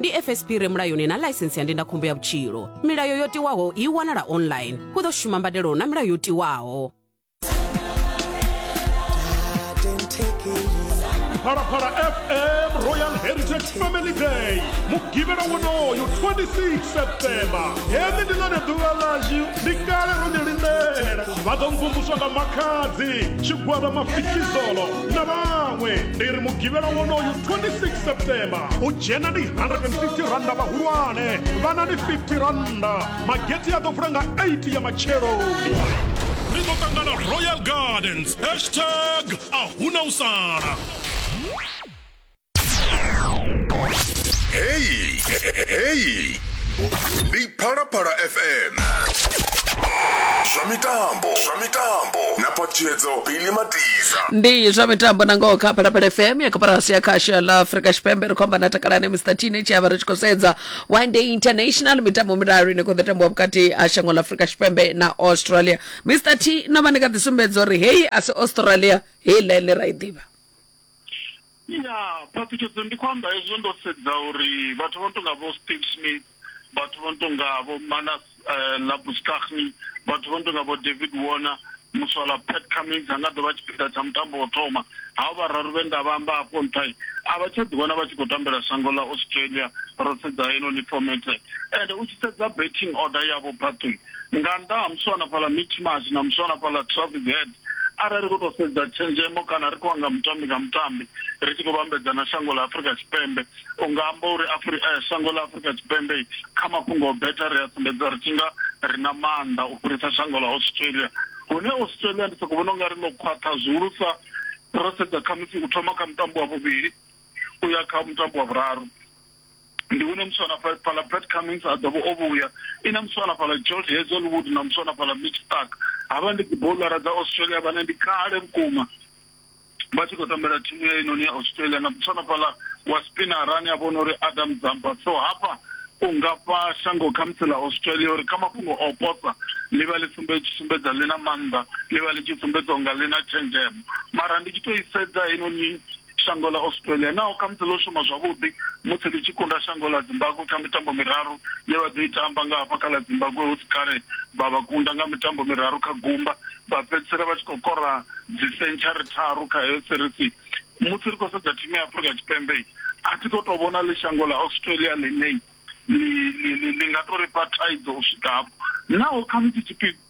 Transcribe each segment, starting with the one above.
ndi fsp re mulayoni na ḽaisensi ya ndindakhombo ya vhutshilo milayo yo tiwaho i wanala online hu ḓo shuma mbadelo na milayo yo tiwaho phalaphala fm royal heritage family day mugivhela wonoyo 26 septemba heḽi ndi ḽone ḓuvha ḽashu ndi kale ro ḽi lindela vha ḓo mvumvuswa nga makhadzi tshigwada mafikizolo na vhaṅwe ri ri mugivhela wonoyu 26 septemba u dzhena ndi 150 randa vhahulwane vhana ndi 50 randa mageti a ḓo vula nga 8 ya matsheloni ri ḓo ṱangana royal gardens hashtag a huna u sala Hey, hey. Ndi Phalaphala FM. Zwa mitambo, zwa mitambo. Na patshedzo Billy Matiza. ndi zwa mitambo na ngoho kha phalaphala fm ya koporasi ya khasho ya la afrika tshipembe ri khou amba na takalani mr teenage avha ri tshi khou sedza one day international mitambo miraru ine khou ḓo tambiwa vhukati ha shango la afrika tshipembe na australia mr t no vha ni kha ḓi sumbedza uri heyi a si australia heyi ḽa ine ra i ḓivha Ya, phaṱhutshedzo ndi khou amba hezwo ndo sedza uri vhathu vho no tonga vho Steve Smith, vhathu vho no tonga vho Manus Labuschagne, vhathu vho no tonga vho David Warner, muswala Pat Cummins a nga ḓo vha tshipiḓa tsha mutambo wa u thoma. Havha vhararu vhe nda vha amba afho nṱha, a vha tsha ḓiwana vha tshi khou tambela shango ḽa Australia ro sedza heinoni fomethe. Ende u tshi sedza batting order yavho phaṱhuni, nga nnḓa ha muswa hanefhaḽa Mitch Marsh na muswa hanefhaḽa Travis Head, Arali ri khou tou sedza tshenzhemo kana ri khou anga mutambi nga mutambi ri tshi khou vhambedzana shango ḽa Afrika Tshipembe, u nga amba uri Afrika, eh, shango ḽa Afrika Tshipembe kha mafhungo o betha ri a sumbedza ri tshi nga ri na maanḓa u fhirisa shango ḽa Australia. Hune Australia ndi sokou vhona u nga ri ḽo khwaṱha zwihulusa ro sedza khamusi u thoma kha mutambo wa vhuvhili u ya kha mutambo wa vhuraru. ndi hune muswana fha- fhala brad cummings a ḓovha o vhuya i na muswana fhala george hazelwood na muswana fhala mitch stark havha ndi dziboulara dza australia vhane ndi kale vhukuma vha tshi khou tambela thimu ya inoni ya australia na muswana fhala wa spinara ane a vhona uri adam zamba so hafha u nga fha shango khamusi ḽa australia uri kha mafhungo a u posa ḽi vha ḽi sumbe tshi sumbedza ḽi na maanḓa ḽi vha ḽi tshi sumbedza unga ḽi na tshenzhemo mara ndi tshi tou i sedza heinoni shango ḽa Australia naho khamusi ḽo shuma zwavhuḓi musi ḽi tshi kunda shango ḽa Zimbabwe kha mitambo miraru ye vha ḓo i tamba nga hafha kha ḽa Zimbabwe hu si kale vha vha kunda nga mitambo miraru kha gumba vha fhedzisela vha tshi khou kora dzisentshari tharu kha heyo serisi musi ri khou sedza thimu ya Afrika Tshipembe a thi khou tou vhona ḽi shango ḽa Australia ḽine ḽi nga tou ri fha thaidzo u swika hafho naho khamusi tshiphiḓa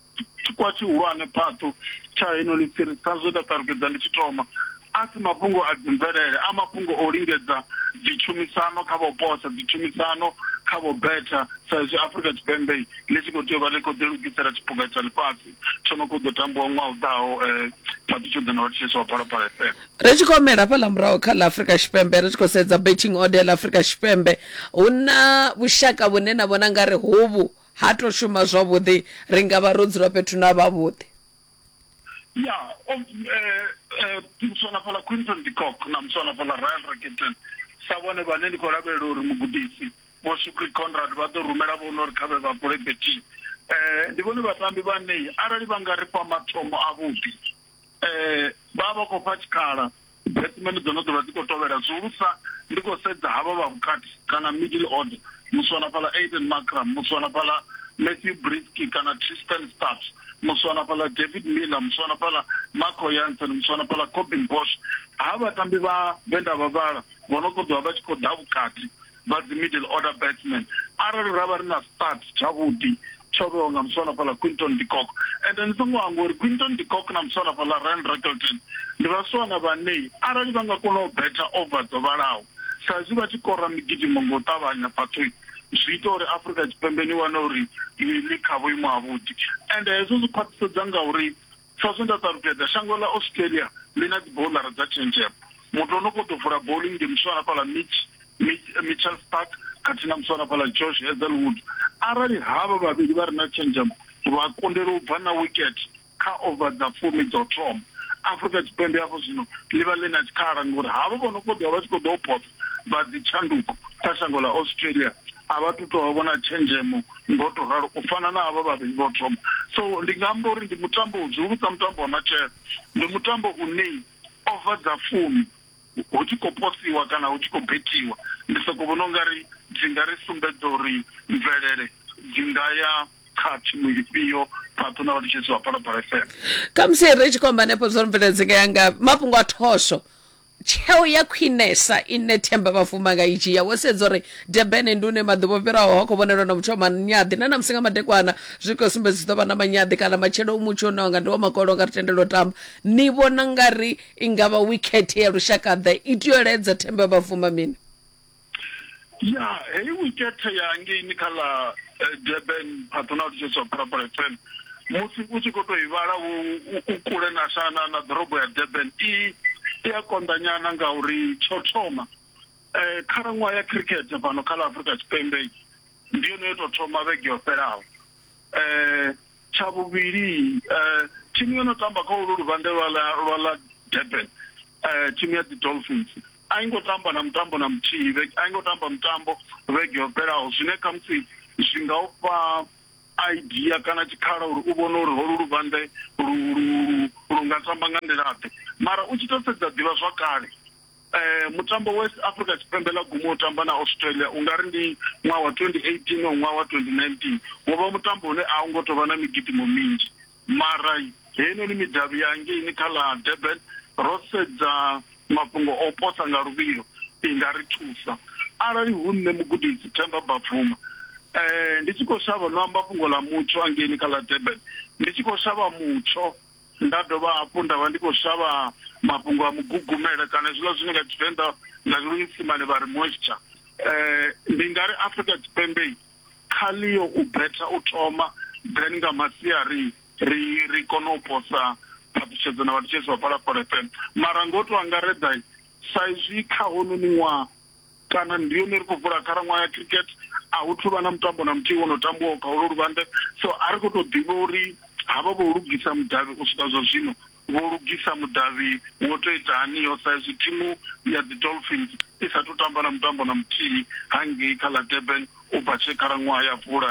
tshikwa tshihulwane phaṱu tsha heno ḽifhiri sa zwe nda ṱalukeza ndi tshi thoma a si mafhungo a dzimvelele a mafhungo o lingedza dzitshumisano kha vho posa dzitshumisano kha vho betha sa izwi afurika tshipembe ḽi tshi khou tea u vha ḽi khou ḓilugisela tshipuga tsha ḽifhasi tsho no khou ḓo tambiwa ṅwaha u ḓaho um eh, phaṱu tsho ḓo na vhathetshelesi wa phalaphala fm ri tshi khou humela fhaḽa muraho kha ḽa afurika tshipembe ri tshi khou sedza betting order ḽa afurika tshipembe hu na vhushaka vhune na vhona nga ri hovhu Ha tou shuma zwavhuḓi. Ri nga vha ro dzula fhethu na vhavhuḓi. Ya, o, e, e, muswa na fhaḽa Quinton de Kock na muswa na fhaḽa Ryle Rickerton, sa vhone vhane ndi khou lavhelela uri mugudisi Vho Shukri Conrad vha ḓo rumela vhone uri kha vhe vha bule bethini. E, ndi vhone vhatambi vhane arali vha nga ri fha mathomo avhuḓi, eh, vha vha khou fha tshikhala dzimene dzo no ḓovha dzi khou tovhela zwihulusa ndi khou sedza havha vha vhukati kana middle order muswana fhala aiden macram muswana fhala matthew brisky kana tristan staps muswana fhala david miller muswana fhala marco yansen muswana fhala cobin bosh ha vhatambi vha vhe nda vha vhala vho no ṱoḓiwa vha tshi khou ḓa vhukati vha dzi middle order batsman arali ra vha ri na start tshavhuḓi tsho vhewa nga muswana fhaḽa quinton decock ende ni songo hangwa uri quinton decock na muswana fhaḽa ryan rakelton ndi vhaswana vhanei arali vha nga kona u betha over dzo vhalaho sa izwi vha tshi kora migidimo nga u ṱavhanya phathoi zwi ita uri afrika tshipembe ni wane uri ni kha vhuimo havhuḓi ende hezwo zwi khwaṱhisedza ngauri Sa zwe nda ṱalutshedza, shango ḽa Australia ḽi na dzibouḽara dza tshenzhemo. Muthu o no khou ḓo vula bouḽingi ndi muswa hafha ḽa Mitch, Mitch, Mitchells Park khathihi na muswa wa hafha ḽa Josh Hazlewood. Arali havha vhavhili vha re na tshenzhemo vha kundelwa u bva na wikethe kha over dza fumi dza u thoma, Afrika Tshipembe hafho zwino ḽi vha ḽi na tshikhala ngauri havho vho no khou ḓo vha vha tshi khou ḓa u posa vha dzi tshanduko kha shango ḽa Australia a vha tu tovha vhona tshenzhemo ngo to ralo u fana na havha vhavhili vho thoma so ndi nga amba uri ndi mutambo u zwihulusa mutambo wa matshelo ndi mutambo une ova dza fumi hu tshi khou posiwa kana hu tshi khou bethiwa ndi soko vhona ungari dzi nga ri sumbedza uri mvelele dzi nga ya kha thimu ifhio phaṱo na vhatshisi vha phalaphala fm khamusi ri tshi khou amba hanefho zwo ri mvelele dzi nga ya nga mafhungo a thosho tsheo ya khwinesa ine themba vhafuma nga i dzhia wo sedza uri durban ndi une maḓuvha o fhiraho ho khou vhonelwa na muthu wa manyaḓi na namusi nga madekwana zwi khou sumbedza zwi ḓo vha na manyaḓi kana matshelo u mutsho une wanga ndi wa makolo nga ri tendela u tamba ni vhona nga ri i nga vha wikhethe ya lushakaḓe i tea u ledza themba vhafuma mini ya heyi wikethe ya ngeini kha ḽa eh, durban patronal church of parapara fm musi u tshi khou tou i vhala u u kule na shana na ḓorobo ya durban i i a konḓanyana ngauri tsho thoma um khalaṅwaha ya cricket fhano kha ḽa afrika tshipembe ndi yone yo tou thoma vhege yo fhelaho um tsha vhuvhili um thimu yo no tamba kha ulu luvhande lwa ḽa lwa ḽa durban um thimu ya dzi dolphins A i ngo tamba na mutambo na muthihi vhege, a i ngo tamba mutambo vhege yo fhelaho zwine khamusi zwi nga u fha idea kana tshikhala uri u vhone uri holu luvhanḓe lu lu lu nga tamba nga nḓila-ḓe. Mara u tshi tou sedza ḓivhazwakale mutambo we Afrika Tshipembe ḽa guma u tamba na Australia u nga ri ndi ṅwaha wa twenty eighteen or ṅwaha wa twenty nineteen, wo vha mutambo une a u ngo tou vha na migidimo minzhi. Mara heinoni midavhi ya ngeini kha ḽa Durban, ro sedza mafhungo o posa nga luvhilo, i nga ri thusa. Arali hu nṋe Mugudisi Themba Bavuma, ndi tshi khou shavha no amba fhungo ḽa mutsho a ngeini kha ḽa Durban, ndi tshi khou shavha mutsho, nda dovha hafhu nda vha ndi khou shavha mafhungo a mugugumela kana hezwiḽa zwine nga Tshivenḓa na Luisimane vha ri moisture, ndi nga ri Afrika Tshipembe kha Leo u betha u thoma then nga masiari ri ri kona u posa phaṱhutshedzo na vhathetshelesi vha Phalaphala FM. Mara ngo to angaredza sa izwi kha hounoni ṅwaha kana ndi hone ri khou vula khalaṅwaha ya cricket a hu thuvha na mutambo na muthihi wo no tambiwaho kha holo luvhande so a ri kho to ḓivha uri havha vho lugisa mudavhi u swika zwa zwino Vho lugisa mudavhi wo tou ita haniho saizwi thimu ya dzi Dolphins i sa thu tamba na mutambo na muthihi hangei kha ḽa Durban u bva tshe khalaṅwaha ya vula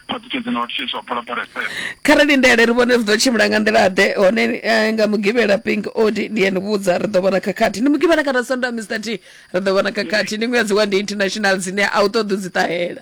vhaṱutshedzi na vhathetshelesi vha bola Pirates FM. Kha ri lindele ri vhone uri zwi ḓo tshimbila nga nḓila-ḓe, hone nga Mugivhela Pink Odi ndi a ni vhudza ri ḓo vhona khakhathi. Ndi Mugivhela kana Sondaha Mister T ri ḓo vhona khakhathi. Ndi ṅwedzi wa ndi international dzine a u ṱoḓi u dzi ṱahela.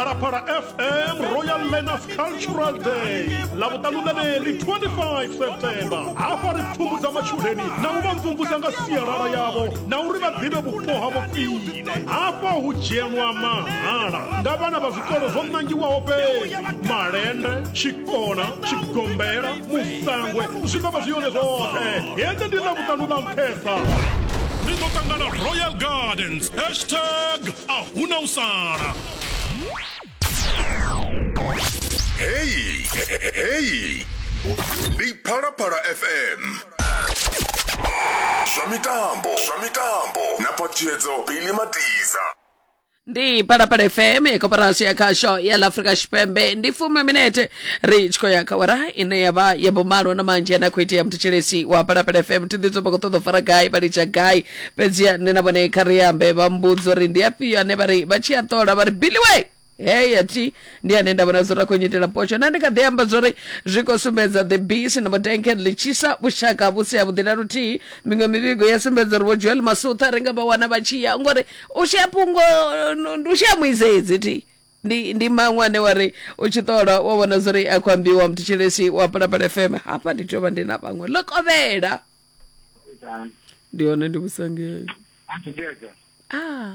phalaphala fm royal learners cultural day lavhuṱanu ḽeneḽi 25 september hafha ri pfumbudza matshudeni na u vha mvumvusa nga sialala yavho na uri vha ḓivhe vhupo havho khwine hafha hu dzhenwa mahala nga vhana vha zwikolo zwo nangiwaho fhedzi malende tshikona tshigombela musangwe zwi ḓo vha zwi yone zwoṱhe hende ndi ḽa vhuṱanu ḽa nṱhesa ri ḓo ṱangana royal gardens hashtag a huna u sala heyi heyi ndi phalaphala fm zwa mitambo zwa mitambo na phaṱhutshedzo bili matiza ndi palapala fm ya koporasi ya khasho ya la afrika tshipembe ndi fumi minete ri tshi khou ya kha wara ine ya vha ya vhumalo na manzhi ane a khou itea muthetsheleshi wa palapala fm thi ḓitsumba khou ṱoḓa u fara gai vha litsha gai fhedziha nṋe na vhone kha ri ambe vha mbudza uri ndi afhio ane vha ri vha tshi a ṱola vha ri biliwe heya thi ndi ane nda vhona zwo ra khou nyitela potsho na ndi kha ḓi amba zwori zwi khou sumbedza the bisi na madenken ḽi tshisa vhushaka vhu si havhuḓi na luthihi miṅwe mivhigo ya sumbedza uri vho joel masutha ri nga vha wana vha tshi ya ngori u shaya fhungo no- ndi u shaya muisedzi thi ndi ndi maṅwe ane wa ri u tshi ṱola wa vhona zwori a khou ambiwa mthetshelesi wa palapala fm hafha ndi tea u vha ndi na vhaṅwe ḽo kovhela ndi hone ndi vhusangei Athu Dedza. ah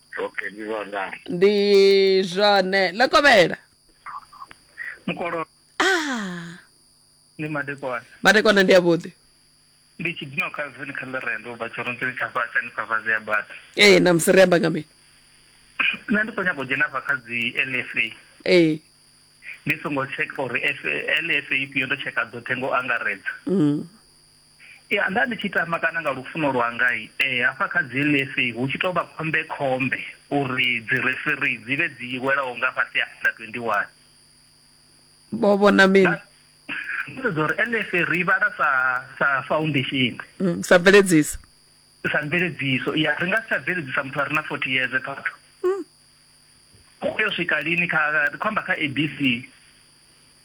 okay ndi zwona ndi zwone ḽo kovhela mukolo ah ndi madekwana madekwana ndi avhuḓi ndi tshidino kha zini kha ḽirendo ubva tshirunzini tsha fhasi ani kha vazi ya bata ee namusi ri amba nga mini nṋe ndi khou nyanga u dzhena hafha kha dzi lfa ee ndi songo tsheka uri lfa ifhio ndo tsheka dzoṱhe ngo angaredza mm. Ya, nda ndi tshi tama kana nga lufuno lwanga e, hafha kha dzi NSA hu tshi tou vha khombekhombe uri dzi referee dzi vhe dzi welaho nga fhasi ha under 21. Vho vhona mini? Nda ndo sedza uri NSA ri i vhala sa sa foundation, Mm, sa mveledziso. sa mveledziso. Ya, ri nga si tsha bveledzisa muthu a re na 40 years phathu. U yo swika lini kha ri khou amba kha ABC.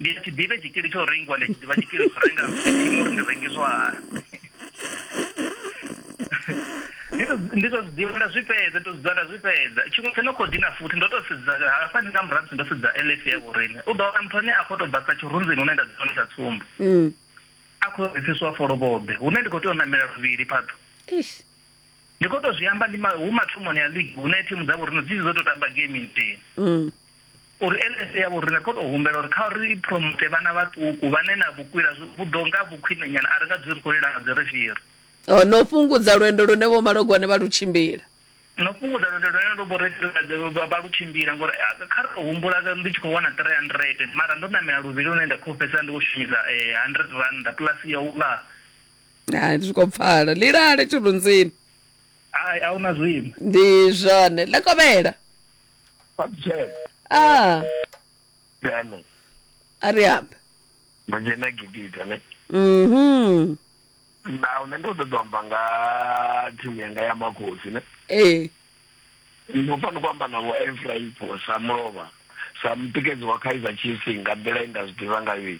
ndi a tshi ḓivhe tshikili tsho rengiwa ndi a tshi ḓivha tshikili tsho renga imo ri ndi rengiswa hani ndi to zwiḓivha nda zwi fhedza to zwiḓivha nda zwi fhedza tshiṅwe tsho no khou dina futhi ndo to sedza hafha ndi nga murahu musi ndo sedza lf ya vhorine u ḓo wana muthu ane a khou tou bva sa tshirunzini hune nda dzi wane sa tsumbo mm. a khou retsiswa folobobe hune ndi khou tea u namela luvhili phaḓo ndi khou tou zwi amba hu mathomoni ya league hune thimu dza vhorine dzi dzo tou tamba game nthihi mm. uri LSA yavho ri nga kona u humbela uri kha ri promote vhana vhaṱuku vhane na vhukwila vhuḓo nga vhukhwinenyana a ri nga dzuli ri khou lila nga dzirefhiri oh, no fhungudza lwendo lune vho malogwane vha lu tshimbila no fhungudza lwendo lune ndo vha lu tshimbila ngori eh, kha ri tou humbula ndi tshi khou wana 300 mara ndo namela luvhili lune nda khou fhedzisa ndi khou shumisa 100 eh, randa plus ya u ḽa hai zwi khou pfala lilale tshirunzini hai a hu na zwino ndi zwone ḽekovhela Babjela. Ah, Dano. ari up. Manje na gidita ne. Mhm. Na une ndo ṱoḓa amba nga thimu yanga ya makhosi ne. Eh. Ndo fanela ku amba na vho Efraim for Samlova. Sa mutikedzi wa Kaizer Chiefs nga nḓila inda zwi ḓivha nga yo.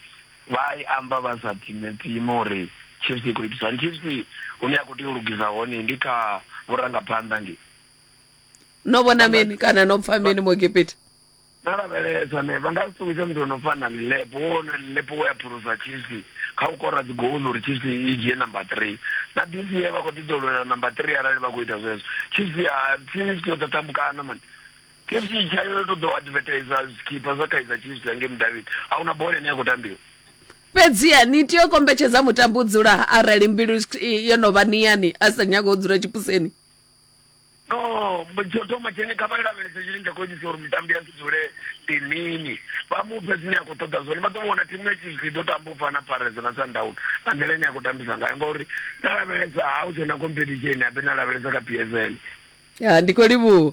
Vha i amba vha sa time time uri Chiefs i khou itisa. Chiefs hune ya khou tea u lugisa hone ndi kha vhurangaphanḓa ngi. no vhona mini kana no pfa mini mu egipita no lavhelesa ne vha nga si ṱuwise muthu ono fana lilepo wo no lilepo wo ya phulusa chisi kha u kora dzigouḽu uri chisi i dzhie number three na disi ye vha khou ḓiḓolwela number three arali vha khou ita zwezwo chisi a chisi yo ḓo tambukana mani chisi tshayo yo to ḓo advertisa zwikhipha zwa kaiza chisi yange mudavhini a huna bola ine ya khou tambiwa fhedziha ni tea u kombetshedza mutambi u dzula arali mbilu i- yo no vha niyani a sa nyaga u dzula tshipuseni no tsho thoma tshine kha vha lavhelese tshine tsha khou itisa uri mitambi ya si dzule ndi mini vha mu fhe zwine a khou ṱoḓa zwone vha ḓo vhona thimu ya chiefs i ḓo tamba u fana pfarese na sundown nga nḓila ine ya khou tambisa ngayo ngauri na lavhelesa ha u tshena competition abe na lavhelesa kha p s l ndi khou livhuwa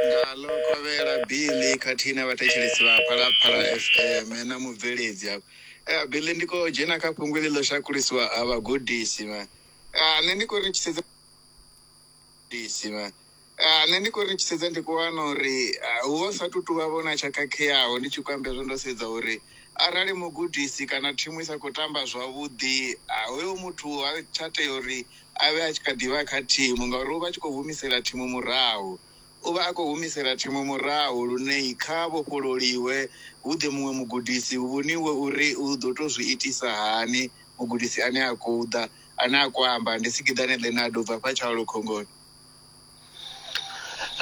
Ngaḽo kovhela, Billy khathihi na vhathetshelesi vha Phalaphala FM na mubveledzi afha. Eh, Billy ndi khou dzhena kha fhungo iḽi ḽo shakulisiwa ha vhagudisi vha. Ah, nṋe ndi khou ri tshi sedza gudisi vha. Ah, nṋe ndi khou ri tshi sedza ndi khou wana uri ah, hu vha hu sa tou tou vha vhona tsha khakheaho ndi tshi khou amba hezwo ndo sedza uri arali mugudisi kana thimu i sa khou tamba zwavhuḓi ah, hoyo muthu ha tsha tea uri a vhe a tshi kha ḓi vha kha thimu ngauri u vha a tshi khou humisela thimu murahu. U vha a khou humisela thimu murahu lune kha vhofhololiwe hu ḓe muṅwe mugudisi hu vhoniwe uri u ḓo tou zwi itisa hani mugudisi ane a khou ḓa. Ane a khou amba ndi Sikiḓane Leonardo u bva hafha Tshaulu Khongoni.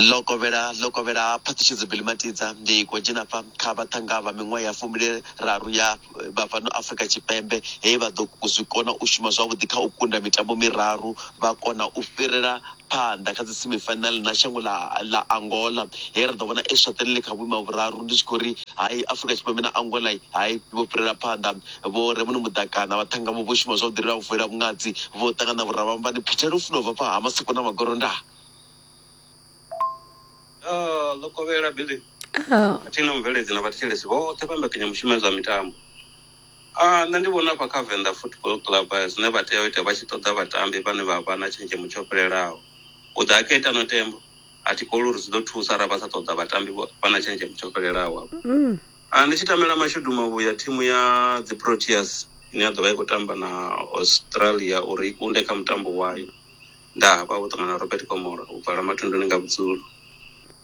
ḽo kovhela ḽo kovhela phaṱhutshedzo Billy Matidza ndi khou dzhena fa kha vhaṱhanga vha miṅwaha ya fumili raru ya vha fhano Afrika Tshipembe he vha ḓo zwi kona u shuma zwavhuḓi kha u kunda mitambo miraru vha kona u fhirela phanḓa kha dzi semifinal na shango ḽa ḽa Angola he ra ḓo vhona Eswatini ḽi kha vhuimo ha vhuraru ndi tshi khou ri hai Afrika Tshipembe na Angola hai vho fhirela phanḓa Vho Remuno Muḓakana, vhaṱhanga vho shuma zwavhuḓi ri a vuela vhungadzi, vho ṱangana na vhurabamba ni phethela lufuno bva fha ha maseko na magoro nda. Ah, ḽo kovhela Billy. Ah. A thi na mubveledzi na vhathetshelesi vhoṱhe vha mbekanyamushumo ya zwa mitambo. Ah, nṋe ndi vhona afha kha Venḓa Football Club eh, zwine vha tea u ita vha tshi ṱoḓa vhatambi vhane vha vha na tshenzhemo tsho fhelelaho. U ḓa a khetha no tembo, a thi koli uri zwi ḓo thusa arali vha sa ṱoḓa vhatambi vho- vha na tshenzhemo tsho fhelelaho. Mm. A Ndi tshi tamela mashudu mavhuya, thimu ya dziProteas ine ya ḓo vha i khou tamba na Australia uri i kunde kha mutambo wayo, nda hafha vho ṱangana na Robert Komola u bvala mathunduni nga vhudzulo.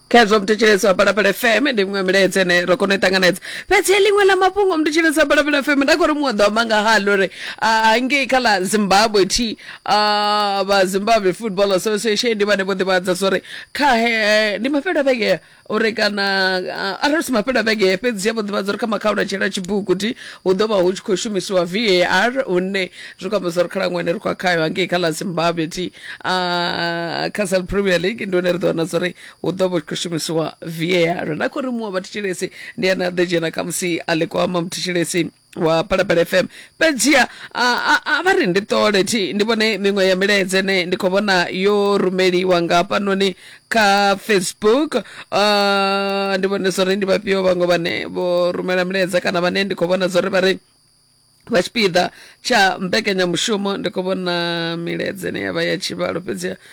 Khezwo muthetshelesi wa Phalaphala FM ndi miṅwe milaedza ine ro kona u i ṱanganedza fhedzi he ḽiṅwe ḽa mafhungo muthetshelesi wa Phalaphala FM nda khou ri muṅwe ḓo amba nga haḽo uri ah, ngei kha ḽa zimbabwe thi ah, vha zimbabwe football association ndi vhane vho ḓivhadza zwa uri kha he ndi mafhelo a vhege uri kana ah, arali si mafhelo a vhege fhedzi ya vho ḓivhadza uri kha makhaula tshela tshibuguti hu ḓo vha hu tshi khou shumisiwa var hune zwi khou amba zwa uri khalaṅwaha ine ri khou ya khayo hangei kha ḽa zimbabwe thi ah, kha sal premier league ndi hone ri ḓo wana zwa uri hu ḓo vha hu tshi khou shumisiwa var na khou ri muṅwe wa vhathetshelesi ndi ane a ḓo dzhena khamusi a ḽi kwama muthetshelesi wa phalaphala fm fhedziha a, a, a vha ri ndi ṱole thi ndi vhone miṅwe ya milaedza ne ndi khou vhona yo rumeliwa nga hafhanoni kha facebook uh, ndi vhone zwo ri ndi vhafhio vhaṅwe vhane vho rumela milaedza kana vhane ndi khou vhona zwo ri vha ri vha tshipiḓa tsha mbekanyamushumo ndi khou vhona milaedza ine yavha ya tshivhalo fhedziha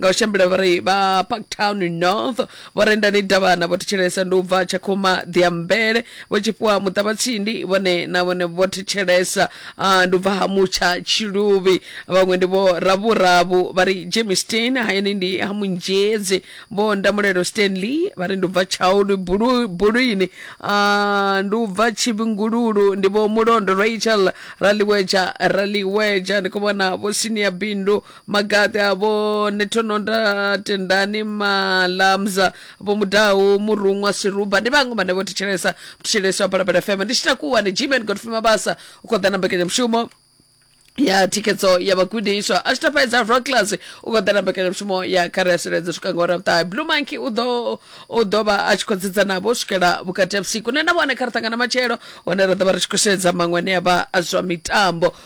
nga u shambela vha ri vha parktown north vho rendani davhana vho thetshelesa ndi u bva tshakhuma ḓiambele vho tshifhiwa muṱavha tsindi vhone na vhone vho thetshelesa ah, ndi u bva ha mutsha tshiluvhi vhaṅwe ndi vho ravhuravu vha ri jemi stein hayani ndi ha munzhedzi vho ndamulelo stanley vha ri ndi u bva tshaulu bulu- bulwini ah, ndi u bva tshivhingululu ndi vho mulondo rachel raliweja raliweja ndi khou vhona vho sinia bindu magaḓi avho ni thononda tendani malamza vho mudahu muruṅwa siruba ndi vhaṅwe vhane vho thetshelesa thetshelesa ya phalaphala fm ndi tshi takuwa ni gmen godfrey mabasa u khou ḓa na mbekanyamushumo ya thikhedzo ya vhagudiswa a tshi tafhedza rocklers u khou ḓa na mbekanyamushumo ya kha ri a suledza swika nga ora vhuṱahe blue monkey u ḓo u ḓo vha a tshi khou dzidza navho u swikela vhukati ha vhusiku nṋe na vhone kha ri ṱangana matshelo hone ra ḓo vha ri tshi khou sedza maṅwe ane a vha a zwa mitambo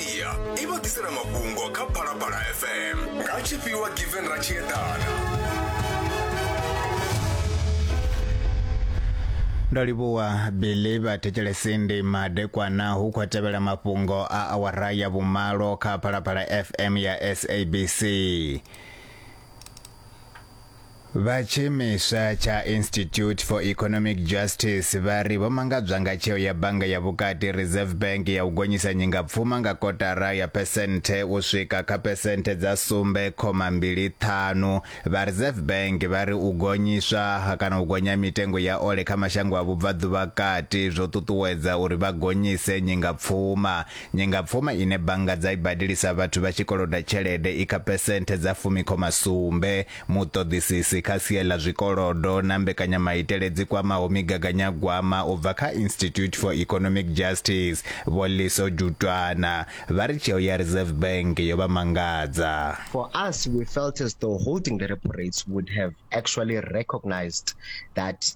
iya i vha ḓisela mafhungo kha phalaphala fm nga tshifhiwa given ra tshi eḓana ndo livhuwa billy vhathetshelesi ndi madekwana hu khou tevhela mafhungo a awara ya vhumalo kha phalaphala fm ya sabc Vha tshiimiswa tsha Institute for Economic Justice vha ri vho mangadzwa nga tsheo ya bannga ya vhukati Reserve Bank ya u gonyisa nyingapfuma nga kotara ya phesenthe u swika kha phesenthe dza sumbe khoma mbili ṱhanu. Vha Reserve Bank vha ri u gonyiswa ha kana u gonya mitengo ya ole kha mashango a vhubvaḓuvha kati zwo ṱuṱuwedza uri vha gonyise nyingapfuma. Nyingapfuma ine bannga dza i badelisa vhathu vha tshi koloda tshelede i kha phesenthe dza fumi khoma sumbe. Muṱoḓisisi kha sia ḽa zwikolodo na mbekanyamaitele dzi kwamaho migaganyagwama u bva kha Institute for Economic Justice, Vho Liso Jutwana, vha ri tsheo ya Reserve Bank yo vha mangadza. For us, we felt as though holding the repo rates would have actually recognised that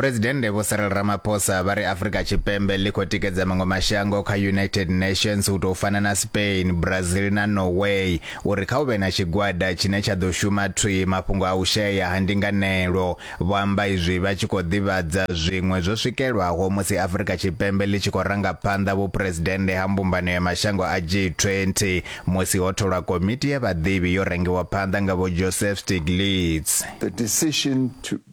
Phresidennde Vho Cyril Ramaphosa vha ri Afrika Tshipembe ḽi khou tikedza maṅwe mashango kha United Nations u tou fana na Spain, Brazil na Norway uri kha u vhe na tshigwada tshine tsha ḓo shuma thwii mafhungo a u shayea ha ndinganelo. Vho amba izwi vha tshi khou ḓivhadza zwiṅwe zwo swikelwaho musi Afrika Tshipembe ḽi tshi khou ranga phanḓa vhuphresidennde ha mbumbano ya mashango a G20 musi ho tholwa komiti ya vhaḓivhi yo rangiwa phanḓa nga Vho Joseph Stiglitz. The decision to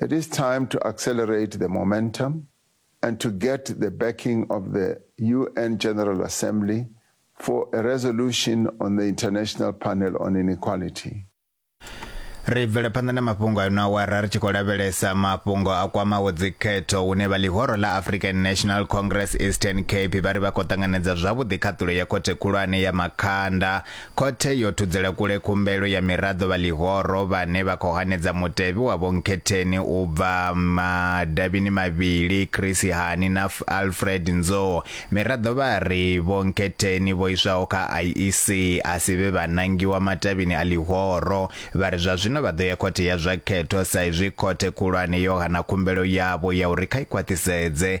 It is time to accelerate the momentum and to get the backing of the UN General Assembly for a resolution on the International Panel on Inequality. ri bvele phanḓa na mafhungo a no awara ri tshi khou lavhelesa mafhungo a kwamaho dzikhetho hune vha ḽihoro ḽa african national congress eastern cape vha ri vha khou ṱanganedza zwavhuḓi khaṱulo ya khothe khulwane ya makhanda Khothe yo thudzela kule khumbelo ya miraḓo vha ḽihoro vhane vha khou hanedza mutevhe wa Vho Nkhetheni u bva madavhini mavhili Chris Hani na Alfred Nzo. Miraḓo vha ri Vho Nkhetheni vho iswaho kha IEC a si vhe vha nangiwa matavhini a ḽihoro vha ri zwa zwino vha ḓo ya khothe ya zwa khetho sa izwi khothe khulwane yo hana khumbelo yavho ya uri kha i khwaṱhisedze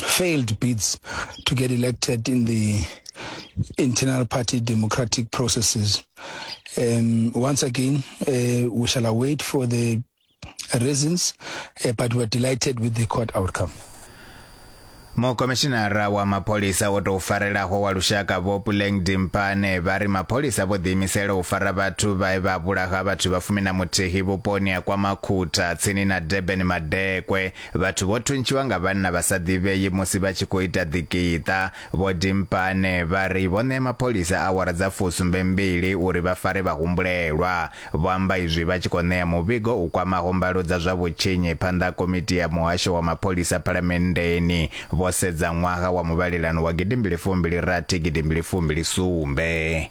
failed bids to get elected in the internal party democratic processes. Um, once again, uh, we shall await for the reasons, uh, but we're delighted with the court outcome. mukomishinara wa mapholisa wo tou farelaho wa lushaka vho puleng dimpane vha ri mapholisa vho ḓiimisela u fara vhathu vhae vha vhulaha vhathu vha fumi na muthihi vhuponi ha kwa makhutha tsini na durban madekwe Vhathu vho thuntshiwa nga vhanna vha sa ḓivhei musi vha tshi khou ita ḓikiṱa. Vho Dimpane vha ri vho ṋea mapholisa awara dza fusumbe mbili uri vha fare vhahumbulelwa. Vho amba izwi vha tshi khou ṋea muvhigo u kwamaho mbalo dza zwa vhutshinyi phanḓa ha komiti ya muhasho wa mapholisa phalamenndeni vho sedza ṅwaha wa muvhalelano wa gidimbili fumbili rathi gidimbili fumbili sumbe.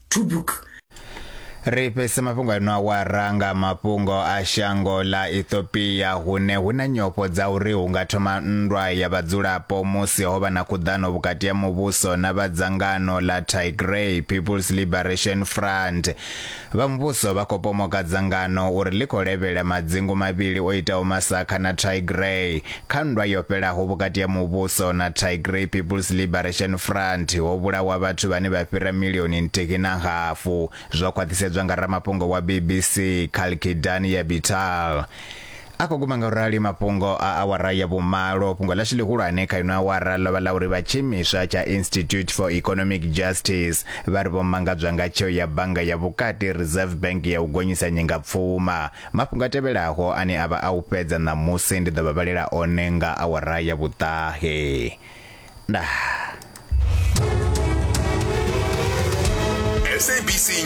to book ri fhese mafhungo ano awara nga mafhungo a shango ḽa ethiopia hune hu na nyofho dza uri hu nga thoma nndwa ya vhadzulapo musi ho vha na khuḓano vhukati ha muvhuso na vhadzangano ḽa tigray peoples liberation front vha muvhuso vha khou pomoka dzangano uri ḽi khou levhela madzingu mavhili o itaho masakha na tigray Kha nndwa yo fhelaho vhukati ha muvhuso na Tigray People's Liberation Front, ho vhulawa vhathu vhane vha fhira milioni nthihi na hafu, zwo khwaṱhisedzwa nga ramafhungo wa BBC, Kalkidan Yabital. A khou guma ngaurali mafhungo a awara ya vhumalo. Fhungo ḽashu ḽihulwane kha ino awara ḽo vha ḽa uri vha tshiimiswa tsha Institute for Economic Justice vha ri vho mangadzwa nga tsheo ya bannga ya vhukati Reserve Bank ya u gonyisa nyingapfuma Mafhungo a tevhelaho ane a vha a u fhedza ṋamusi ndi ḓo vha vhalela one nga awara ya vhuṱahe. Ndaa.